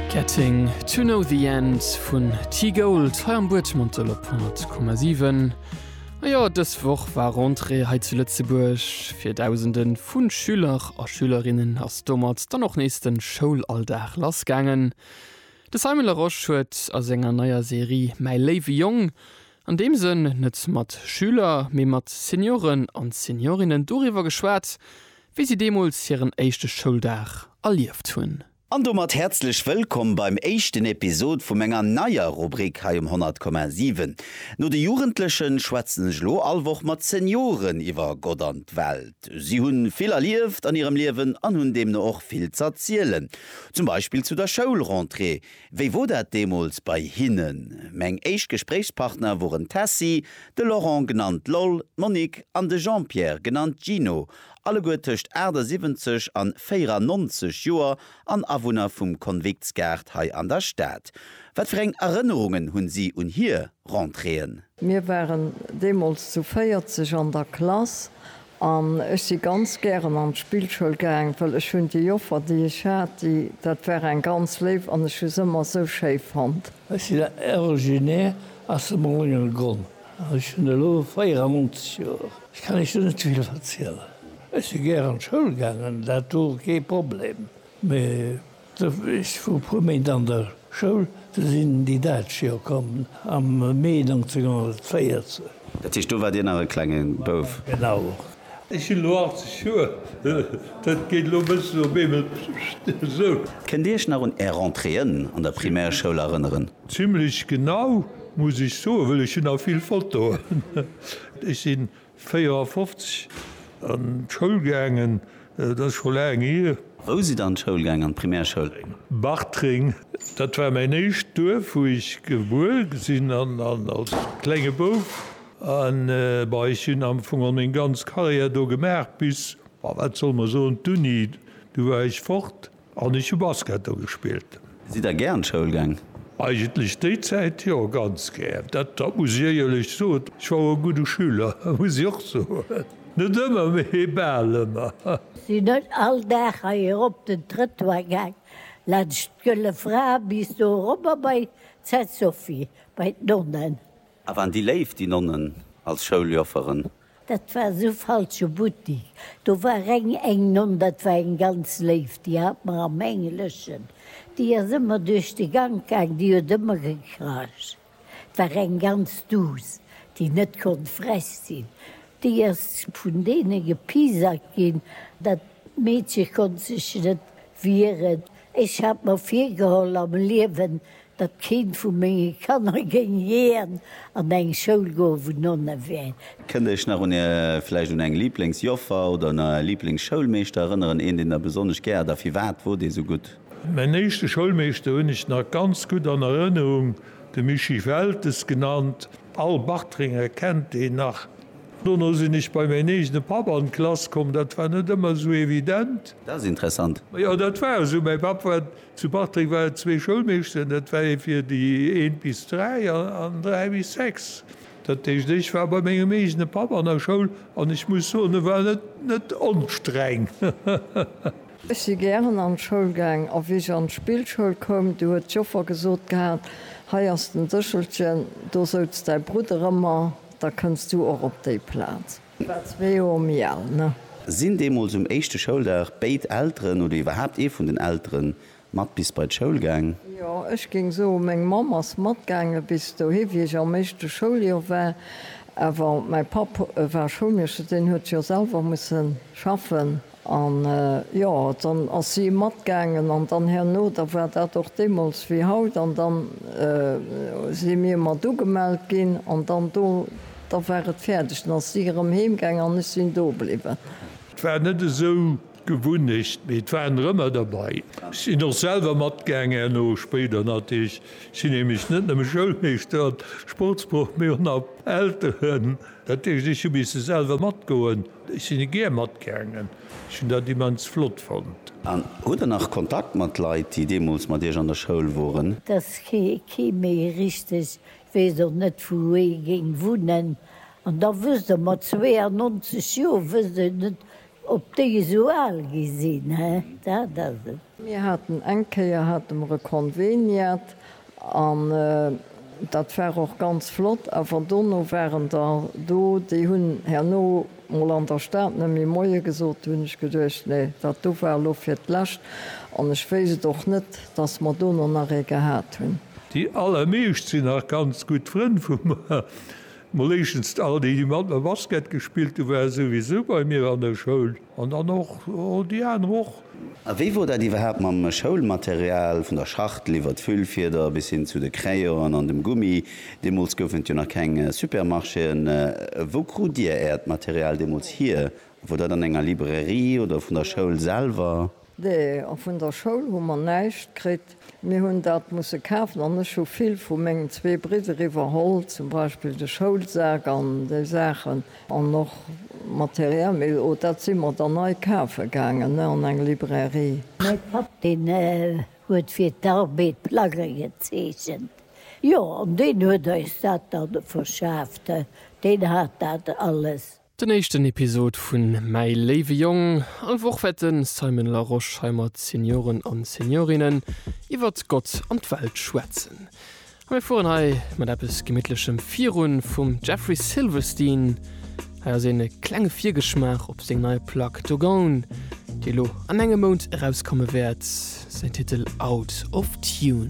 Getting to know the end vun T-Gold hei am Buedgmantel op 100,7. A jo, dës Woch war Rentrée hei zu Lëtzebuerg. Fir Dausende vu Schüler a Schülerinnen ass domat dann och nees de Schoulalldag lassgaangen. De Simon Larosche huet a senger neier Serie Mäi léiwe Jong an deem Sënn net mat Schüler, mee mat Senioren an Seniorinnen doriwwer geschwat, wéi si deemools hiren éischte Schouldag erlieft hunn. An domat häerzlech wëllkomm beim éischten Episod vu menger neier Rubrik hei um 100,7. No de Jugendlechen schwätzen ech elo all Woch mat Senioren iwwer Gott an d'Welt. Si hunn vill erlieft an hirem Liewen an hunn deemno och vill z'erzielen. Zum Beispill zu der Schoulrentrée, Wéi wor dat deemols bei hinnen? Meng éischt Gespréichspartner woren d'Tessy, de Laurent genannt Loll, d'Monique an de Jean-Pierre genannt Gino, alleguer tëscht 78 an 94 Joer an Awunner vum Konviktsgaart hei an der Stad. Wat fir eng Erënnerungen hunn si un hier Rentréeën? Mir waren deemols zu 40 an der Klass An ech si ganz gären an d'Spillschoul gaang, well ech hunn déi Joffer, déi ech hat, déi, dat war eng ganz léif an ech hu se ëmmer esou schéi fonnt. Ech sinn originaire aus dem Moulengergronn an ech hunn elo 94 Joer. Ech kann Iech do net vill verzielen. Ech si gär an d'Schoul gaangen, dat wor kee Problem, mee. Ech wor e puer Méint an der Schoul, du sinn déi Däitsch jo komm am Mee 1914. Dat heescht, do war Dir nach e klenge Bouf? Genau. Ech hunn elo 80 Joer, dat geet elo e bëssen op eemol esou. Kënnt Dir Iech nach un Är Rentréeën an der Primärschoul erënneren? Zimlech genau, muss ech soen, well ech hunn nach vill Fotoen. Ech sinn 54 an d'Schoul gaangen, dat ass scho laang hier. Wou sidd der an d'Schoul gaangen, an d'Primärschoul? Bartreng, dat war mäin éischt Duerf, wou ech gebuer sinn als klenge Bouf. An bei ech hunn am Fong och meng ganz Carrière do gemaach bis, wat solle mer soen, d'Uni, du war ech fort. An ech hu Basket do gespillt. Sidd der gär an d'Schoul gaang? Eigentlech déi Zäit jo, ganz gär. Dat dat muss ech éierlech soen. Ech war och e gudde Schüler, muss ech och soen. Net ëmmer, mee bal ëmmer. Sinn ech all Dag hei erop den Trëttoir gaang, laanscht d'Gëlle Fra bis do erobber bei d'Sainte Sophie, bei d'Nonnen. A waren déi léif, déi Nonnen, als Schouljofferen? Dat war esou falsche Buttik, do war reng eng Nonn, dat war eng ganz léif, déi hat mer am Engleschen, déi ass ëmmer duerch de Gank gaang, déi huet ëmmer gekracht, et war eng ganz duuss, déi net konnt frech sinn, déi ass vun deene gepiesackt ginn, dat Meedche konnt sech net wieren. Ech hat mer virgeholl am Liewen, datt keent vu menge Kanner géing jiän an eng Schoul goen, wou Nonne wären. Kënnt Iech nach un Är, vläicht un eng Liblingsjoffer oder un Är Liblingsschoulmeeschter erënneren? Een, deen Der besonnesch gär hat a firwat wor dee sou gutt? Mäin éischte Schoulmeeschter hunn ech nach ganz gutt an Erënnerung, de Mischii Weltes genannt. All Bartrenger kennt deen nach. Dono sinn ech bei mäin eegene Papp an d'Klass komm, dat war net ëmmer sou evident. Dat ass interessant. Jo, dat war esou, mäi Papp war Zu Bartreng war et zwee Schoulmeeschteren, dat war ee fir déi eent bis dräi an dräi bis sechs. Dat heescht, ech war bei mengem eegene Papp an der Schoul an ech muss soen, e war net onstreng. Ech si gären an d'Schoul gaang a wéi ech an d'Spillschoul koum, du huet d'Joffer gesot gehat, hei ass den Séchelchen, do souz däi Brudder ëmmer, da kënns du och op déi Plaz. War zwee Joer méi al, ne? Sinn deemools um éischte Schouldag béid Elteren oder iwwerhaapt ee vun den Eltere mat bis bei d'Schoul gaang? Jo, ech géing soen, meng Mamm ass matgaange bis dohi, wéi ech am éischte Schouljoer war. Awer mäi Papp war Schoulmeeschter, deen huet jo selwer musse schaffen. An, jo, dann ass si matgaangen, an dann herno, da war dat och deemools wéi haut, an dann si mir mat ugemellt ginn, an dann do, da war et fäerdeg, dann ass si erëm heemgaangen an ech sinn do bliwwen. Et war net esou d'Gewunnecht, mee et waren der ëmmer derbei. Ech sinn och selwer matgaangen herno, spéider natierlech. Ech sinn nämlech net nëmme Schoulmeeschter an Sportsproff, mee och nach Elteren. Dat heescht, ech hu misse selwer matgoen. Ech sinn e gär matgaangen. Ech hunn dat immens flott fonnt. An hutt der nach Kontakt mat Leit, déi deemools mat Iech an der Schoul woren? Dass kee méi richteg weess, och net wou ee géing wunnen. An da wësst Der, mat 92 Joer wësst een net, ob déi esou al gi sinn, dat ass et. Mir haten eng Kéier, hate mer e Konveniat, An dat war och ganz flott. Awer dono waren der do, déi hunn herno mol an der Stad net méi Moie gesot. Do hunn ech geduecht, Nee, dat do war elo fir d'lescht. An ech wéisst et och net, dass mer dono nach ee gehat hunn. Déi allermeescht sinn nach ganz gutt Frënn vu mer. Mol éischtens all déi, déi mat mer Basket gespillt hu, ware souwisou bei mir an der Schoul. An dann och déi aner och. A wéi wor dat iwwerhaapt mam Schoulmaterial, vun der Schachtel iwwert d'Füllfieder bis hin zu de Crayonen an dem Gummi? Deemools goufen et jo nach keng Supermarchéen. Wou krut Dir Äert Material deemools hier? Wor dat an enger Librairie oder vun der Schoul selwer? Nee, och vun der Schoul hu mer näischt kritt. Mir hunn dat musse kafen an ech hu vill vu mengen zwee Bridder iwwerholl, zum Beispill de Schoulsak an déi Saachen an och materiell, mee o dat si mer dann nei kafe gaangen, ne, an eng Librairie. Mäi Papp, deen huet fir d'Arbed Plagge gezeechent, jo, an deen huet eis dat da verschaaft, deen hat dat alles. Den éischten Episod vun Mäi léiwe Jong. All Woch wäert de Simon Larosche hei mat Senioren an Seniorinnen iwwert Gott an d'Welt schwätzen. A mir fueren hei mat eppes gemittlechem virun, vum Jeffrey Silverstein. Hei ass een klenge Virgeschmaach op seng nei Plack Dogone, déi elo an engem Mount erauskomme wäert, säin Titel Out of Tune.